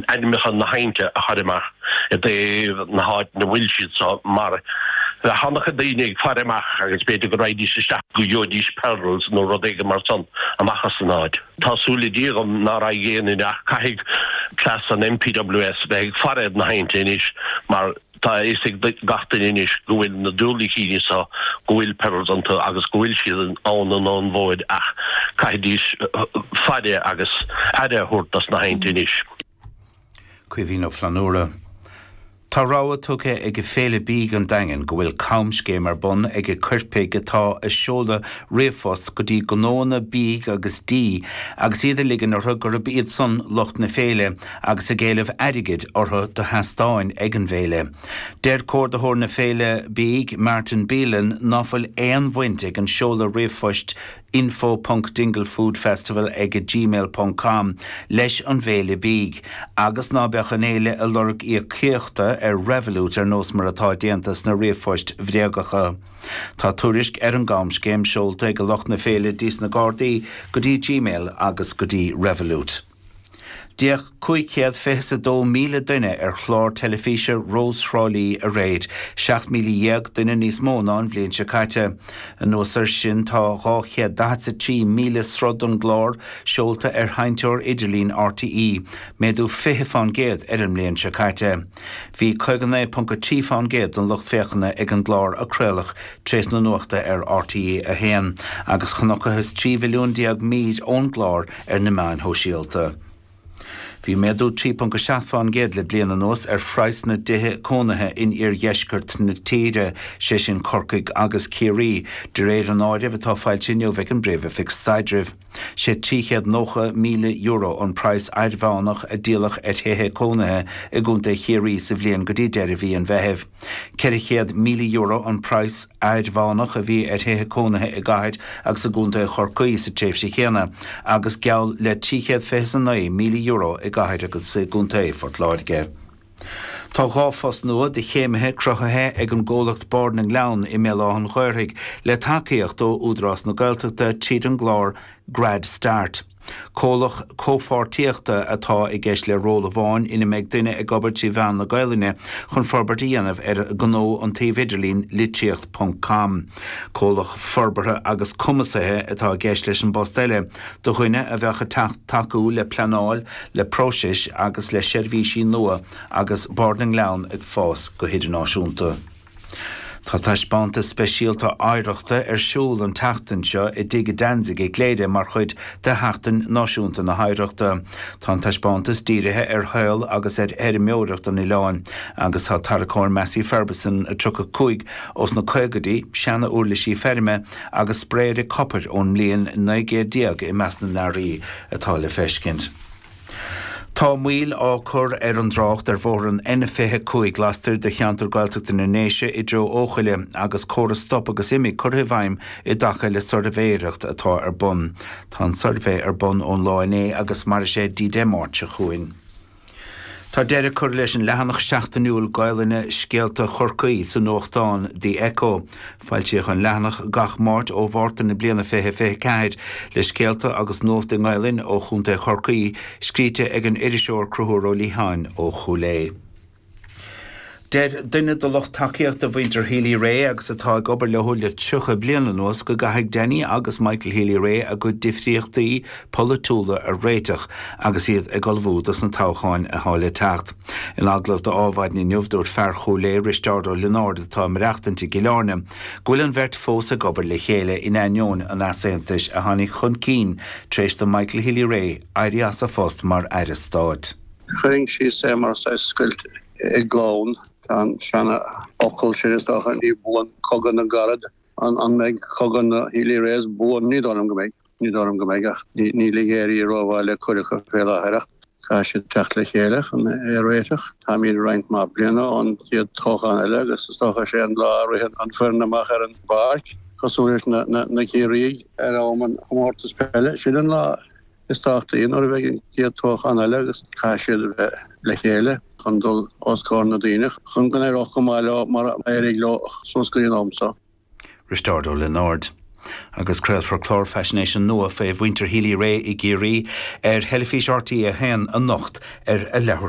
ainmneacha na habhainnte a chur amach i dtaobh na háite ina bhfuil siad so, mar bheadh ana-chuid daoine ag faire amach agus b'fhéidir go raghaidís isteach go gheobhaidís pearls nó rud éigin mar san amach as an áit. Tá súil ag Dia dhom ná raghaidh aon duine ach caithfidh b'fhéidir an NPWS bheith ag faire ar na habhainnte anois mar, Tá a fhios ag gach duine anois go bhfuil na diúilicíní seo, go bhfuil pearls iontu agus go bhfuil siad ann in an-mhóid ach caithfidís faire agus aire a thabhairt dos na habhainnte anois. Caoimhín Ó Flannabhra Tá rabhadh tugtha ag Féile Bídh an Daingin go bhfuil camscéim ar bun ag coirpigh atá ag seoladh ríomhphost go dtí gnóanna bídh agus dí agus iad ag ligean orthu gurab iadsan lucht na féile agus ag éileamh airgid orthu do sheastáin ag an bhféile. Deir comhordaitheoir na féile bídh, Martin Bealin, ná fuil aon bhaint ag an seoladh ríomhphoist info.dinglefoodfestival ag gmail ponc com leis an bhféile bídh agus ná beadh an fhéile ag lorg íocaíochta ar Revolut ar nós mar atá déanta sna ríomhphoist bhréagacha. Tá tuairisc ar an gcamscéim seolta ag lucht na féile go dtí's na Gardaí go dtí gmail agus go dtí Revolut. D'fhéach cúig chéad fiche 's a dó míle duine ar chlár teilifíse Rós Thrá Lí aréir, seacht míle déag duine níos mó ná an bhliain seo caite. Anuas air sin tá dhá chéad daichead 's a trí míle sruth don gclár seolta ar sheinnteoir idirlín RTÉ, méadú fiche fán gcéad ar an mbliain seo caite. Bhí caoga naoi ponc a trí fán gcéad don lucht féachana ag an gclár a craoladh tar éis na nuachta ar RTÉ a haon, agus chonacthas trí mhilliún déag mír ón gclár ar na meáin shóisialta. Bhí méadú 3.7 fán gcéad le bliain anuas ar phraghas na dtithe cónaithe in iardheisceart na tíre, sé sin Corcaigh agus Ciarraí, de réir an áirimh atá foilsithe inniu ag an bPríomh-Oifig Staidrimh. Sé €390,000 an praghas airmheánach a díoladh ar thithe cónaithe i gContae Chiarraí sa bhliain go dtí deireadh mhí an Mheithimh. €400,000 an praghas airmheánach a bhí ar thithe cónaithe i gcathair agus i gcontae Chorcaí sa tréimhse chéanna agus geall le €329,000 i gcathair agus i gcontae Phort Láirge. Tá dhá phost nua do chéimithe cruthaithe ag an gcomhlacht Bard na nGleann i mBéal Átha'n Ghaorthaidh le tacaíocht ó Údarás na Gaeltachta tríd an gclár Grad Start. Comhlach comhpháirtíochta atá i gceist le ról amháin ina mbeidh duine ag obair trí mheán na Gaelainne chun forbairt a dhéanamh ar ghnó an tsuímh idirlín litríocht ponc com. Comhlach forbartha agus cumasaithe atá i gceist leis an bpost eile, do dhuine a bheadh ag tacú le pleanáil, le próisis agus le seirbhísí nua agus Bard na nGleann ag fás go hidirnáisiúnta. Tá taispeántas speisialta oidhreachta ar siúl an tseachtain seo i dTigh Danzig i gCléire mar chuid de Sheachtain Náisiúnta na hOidhreachta. Tá an taispeántas dírithe ar shaol agus ar fheirmeoireacht an oileáin agus tá tarracóir Massey Ferguson 35 ós na caogaidí, seana-uirlisí feirme agus spraeire copair ón mbliain 1900 i measc na n-earraí atá le feiscint. Tá moill á cur ar an dtrácht ar bhóthar an N25 lastoir de cheantar Gaeltachta na nDéise i dtreo Eochaille agus córas 'stop agus imigh' curtha i bhfeidhm i dtaca le suirbhéireacht atá ar bun. Tá an suirbhé ar bun ón lá inné agus mairfidh sé dtí Dé Máirt seo chugainn. Tá deireadh curtha leis an leathanach seachtainiúil Gaolainne 'Scéalta Chorcaí' sa nuachtán The Echo. Foilsíodh an leathanach gach Máirt ó Mhárta na bliana 2024, le scéalta agus nuacht i nGaelainn ó Chontae Chorcaí, scríte ag an iriseoir Cruthúr Ó Liatháin ó Chúil Aodha. Deir duine do lucht tacaíochta mhuintir Healy-Rae agus atá ag obair leo le 30 bliain anuas go gcaithfidh Danny agus Michael Healy-Rae a gcuid difríochtaí polaitiúla a réiteach agus iad ag ullmhú dos na toghcháin atá le teacht. In agallamh d'Adhmhaidin inniu, dúirt fear Chúil Aodha, Risteárd Ó Lionáird, atá ag maireachtaint i gCill Áirne, go bhfuil an bheirt fós ag obair le chéile in ainneoin an easaontais a tháinig chun cinn tar éis do Michael Healy-Rae éirí as a phost mar aire stáit. Tharraing sé mar saghas scoilt i gclann. Tá an seanfhocal sin, is dócha, 'ní buan cogadh na gcarad'. An mbeidh cogadh na Healy-Raes buan? Ní dóigh liom go mbeidh. Ní dóigh liom go mbeidh, ach níl ag éirí rómhaith le cuid acu fé láthair, ach caithfidh siad teacht le chéile chun é a réiteach. Táimid roinnt mhaith bliana ón chéad toghchán eile agus is dócha sé an lá a ritheann an foireann amach ar an bpáirc, cosúil leis na Ciarraígh ar an gcomórtas peile, sin an lá. Is tábhachtaí nuair a bheidh an chéad toghchán eile agus caithfidh siad a bheith le chéile chun dul os comhair na ndaoine chun go n-éireodh go maith leo mar a éirigh leo suas go dtí an am seo. Risteárd Ó Lionáird. Agus craolfar clár faisnéise nua faoi mhuintir Healy-Rae i gCiarraí ar theilifís RTÉ 1 anocht ar a leathuair.